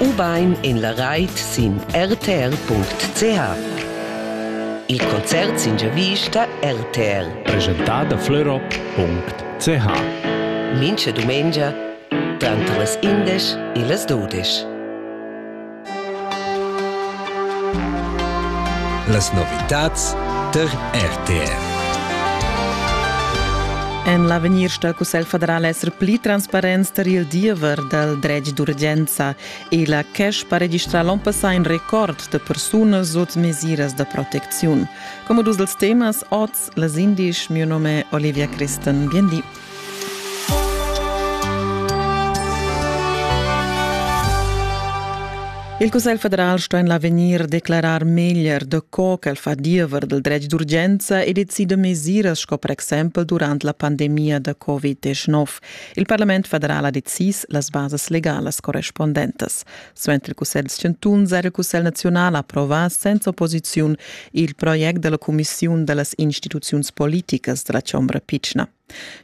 ubain en la rait sin rtr.ch. Il concert sin giavista RTR. Presentà da fleuro.ch. Mincha dumengia tranter las indesch e las dudesch. Las novitads tar RTR. En l'avegnir sto il Cussegl federal esser pli transparent tar il diever dal dretg d'urgenza e la cash per registrar l'onn passà in record da persunas sut mesiras da protecziun. Come dus dels temas oz las indisch, mio nome è Olivia Christen. Biendi. Il Cussegl federal sto en l'avegnir declarar meglier da co ch'el fa diever dal dretg d'urgenza e decida mesiras sco per exempel durant la pandemia da Covid-19. Il Parlament federal ha decis las basas legalas correspondentas. Suenter il Cussegl chantuns ha il Cussegl naziunal approvà senza opposiziun il project dalla cumissiun dallas instituziuns politicas dalla Chombra pitschna.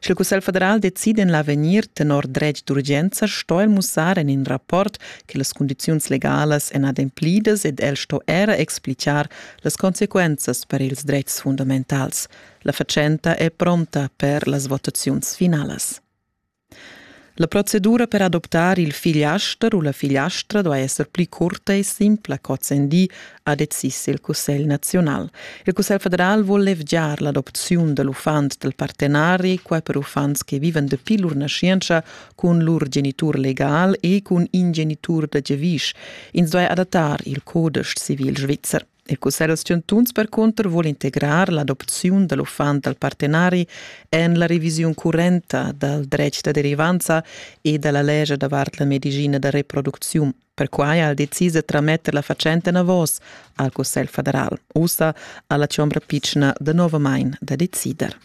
Sch'il Cussegl federal decida en l'avegnir tenor dretg d'urgenza, sto el mussar en in rapport che las cundiziuns legalas èn ademplidas ed el sto era explichar las consequenzas per ils dretgs fundamentals. La fatschenta è pronta per las votaziuns finalas. La procedura per adoptar il figliaster u la figliastra duai esser pli curta e simpla, co ha decis il Cussegl naziunal. Il Cussegl federal vul levgiar l'adopziun da l'uffant dal partenari, quai per uffants che vivan dapi lur naschientscha cun lur genitur legal e cun in genitur da giavisch. Ins duai adattar il codice civil svizzer. Il Cussegl dals chantuns percunter vul integrar l'adopziun da l'uffant dal partenari en la revisiun currenta dal dretg da derivanza e da la lescha davart la medicina da reproducziun. Perquai ha el decis da trametter la fatschenta enavos al Cussegl federal. Ussa ha la chombra pitschna danovamain da decider.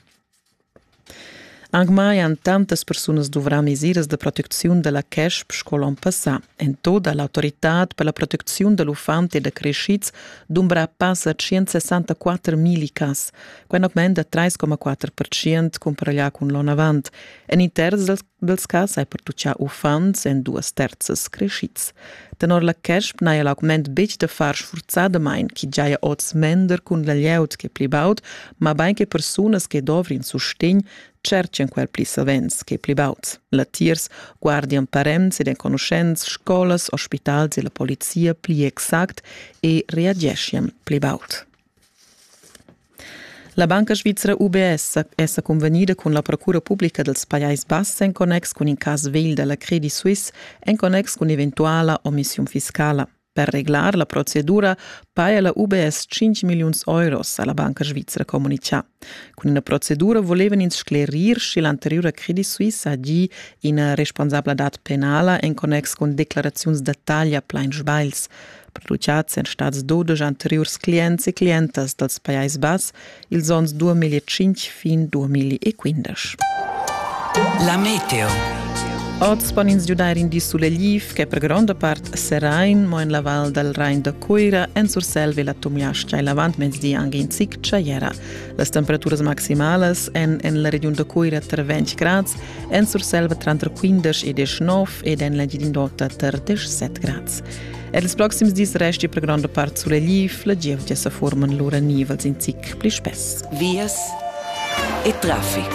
Anc mai han tantas persunas duvrà mesiras da protecziun da la CESP sco l'onn passà. En tut ha l'autoritad per la protecziun da l'uffant e da creschids dumbrà pass a 164 mil cas. Quai augmenta 3,4 percent cumparaglià cun l'onn avant. En in terz dals Bels cas hai pertuchà uffants en duas terzas crescids. Tenor la CESP n'haja l'augment betg da far sfurzadamain ch'i giaja oz mender cun la glieud che pli baud, mabain che persunas che dovrin sustegn cercien quel pli savens che pli baud. Latiers guardian parents ed enconuschents, scolas, ospitals e la polizia pli exact e reageschien pli baud. La banca svizra UBS è sa cunvegnida cun la procura publica dals Pajais Bass en connex cun in cas vegl da la Credit Suisse en connex cun eventuala omissiun fiscala. Per reglar la procedura paja la UBS 5 milliuns euros, ha la banca svizra communitgà. Cun ina procedura volevan ins sclerir, sche l'anteriura Credit Suisse ha gì ina responsabladad penala en connex cun declaraziuns da taglia plain sbagls. Producents èn stads dudesch anteriurs clients e clientas dals Pajais Bass ils onns 2005 fin 2015. La meteo. Oz pon ins giudair in di sulegliv che per gronda part Serain, mo en la val dal Rain da Cuira, en Surselva e la Tumliascha è l'avantmezdi anche in zic tschaiera. Las temperaturas maximalas èn en la regiun da Cuira tra 20 grads, en Surselva tranter 15 e 19 ed en l'Engiadin'Ota tra 17 grads. Er ils proxims dis resti per gronda part sulegli, la gievgia sa forman lura nivels in zic pli spess. vias e traffic.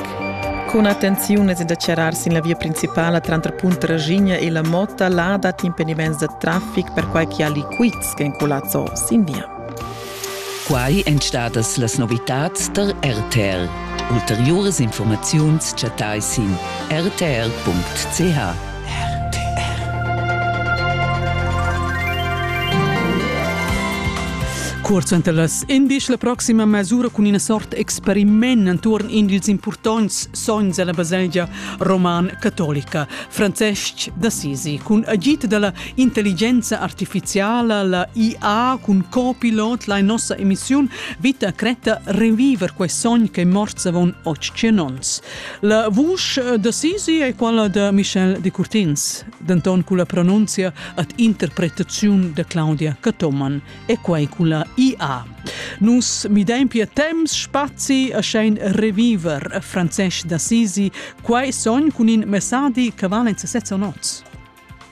Cun attenziun es da charrar sin la via principala tranter Punt Raschigna e la Motta là dat impediments da traffic perquai chi ha liquids che inculazzo sin via. Quai èn stadas las novitads tar RTR. Ulteriuras informaziuns chattai sin rtr.ch. Cuort suenter las indisch la proxima mesura cun ina sort experiment entuorn in dils impurtonts sogns alla baselgia roman-catolica, Francesc d'Assisi, cun agit dalla intelligenza artificiala, la IA cun copilot la nossa emissiun Vita cretta reviver quei sogn che è morts avon 800 onns. La vusch da Sisi è quella da Michel Decurtins, denton culla pronunzia ad interpretaziun da Claudia Cathoman e quai culla IA. Nus midein pia temps, spazi a schein reviver francès da Sisi, quai sogn cun in messadi che vala in sesezza nots.